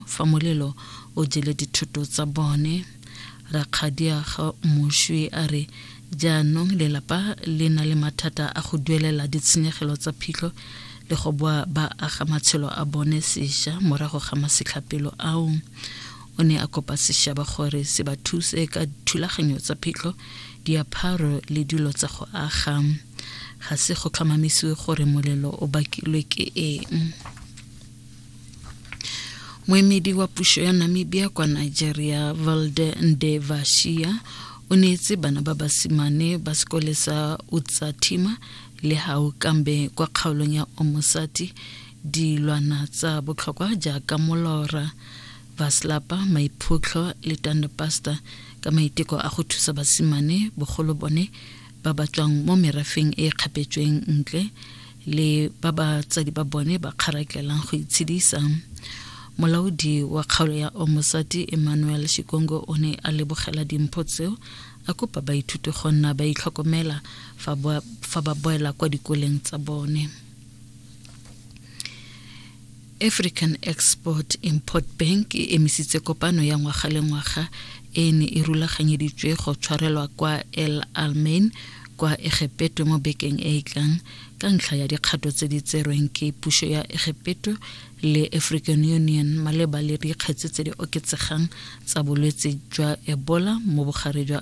Fa molelo o jele dithoto tsa bone, Rakgadiaga Moshwe a re jaanong lelapa le na le mathata a go duelela ditshenyegelo tsa phitlho le go boa ba aga matshelo a bone sesha morago ga masetlhapelo ao. O ne a kopa seshaba gore se ba thuse ka thulaganyo tsa phitlho, diapharo le dilo tsa go aga. Ga se go tlhomamisiwe gore molelo o bakilwe ke eng. Moemedi wa puso ya Namibia kwa Nigeria, Valde Ndevashia, o neetse bana ba basimane ba sekole sa Utsatima le Haukambe kwa kgaolong ya Omosati dilwana tsa botlhokwa jaaka molora baslapa maiphutlho le tandepasta ka maiteko a go thusa basimane bogolo bone ba ba tswang mo merafeng e e kgapetsweng ntle le ba batsadi ba bone ba kgaraklelang go itshedisa molaodi wa kgaolo ya omosati emmanuel shikongo o ne a lebogela dimpho tseo a kopa baithuti go nna ba itlhokomela fa ba boela kwa dikoleng tsa bone African Export Import Bank e emisitse kopano ya ngwaga le ngwaga e ne e rulaganyeditswe go tshwarelwa kwa El Almain kwa Egepeto mo bekeng e e tlang ka ntlha ya dikgato tse di tserweng ke puso ya Egepeto le African Union maleba le dikgetse tse di oketsegang tsa bolwetse jwa Ebola mo bogare jwa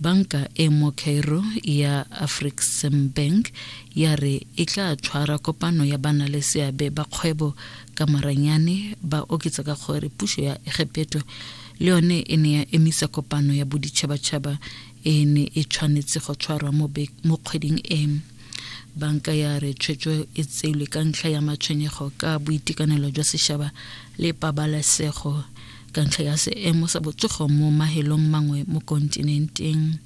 Banka e mo Cairo ya Afreximbank ya re e tla tshwara kopano ya bana le seabe ba kgwebo ka maranyane ba oketsa ka gore puso ya Egepeto le yone e ne ya emisa kopano ya boditšhabatšhaba e ne e tshwanetse go tshwarwa mo kgweding e. Banka ya re tshwetso e tseilwe ka ntlha ya matshwenyego ka boitekanelo jwa sešaba le pabalesego ka ntlha ya seemo sa botsogo mo mahelong mangwe mo kontinenteng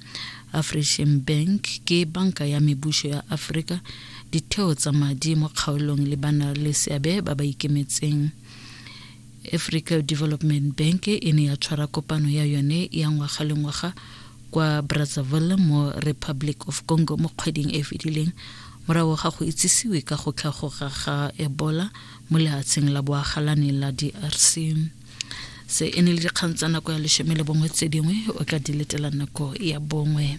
african bank ke banka ya mebuso ya aforika ditheo tsa madi mo kgaolong le bana le seabe ba ba ikemetseng africa development bank e ne ya tshwara kopano ya yone ya ngwaga le ngwaga kwa brazzaville mo republic of congo mo kgweding e e fetileng morago ga go itsisiwe ka go tlhagoga ga ebola mo lehatsheng la boagalane la drc se e ne le dikgang tsa nako ya leshome le bongwe tse dingwe o ka di letela nako ya bongwe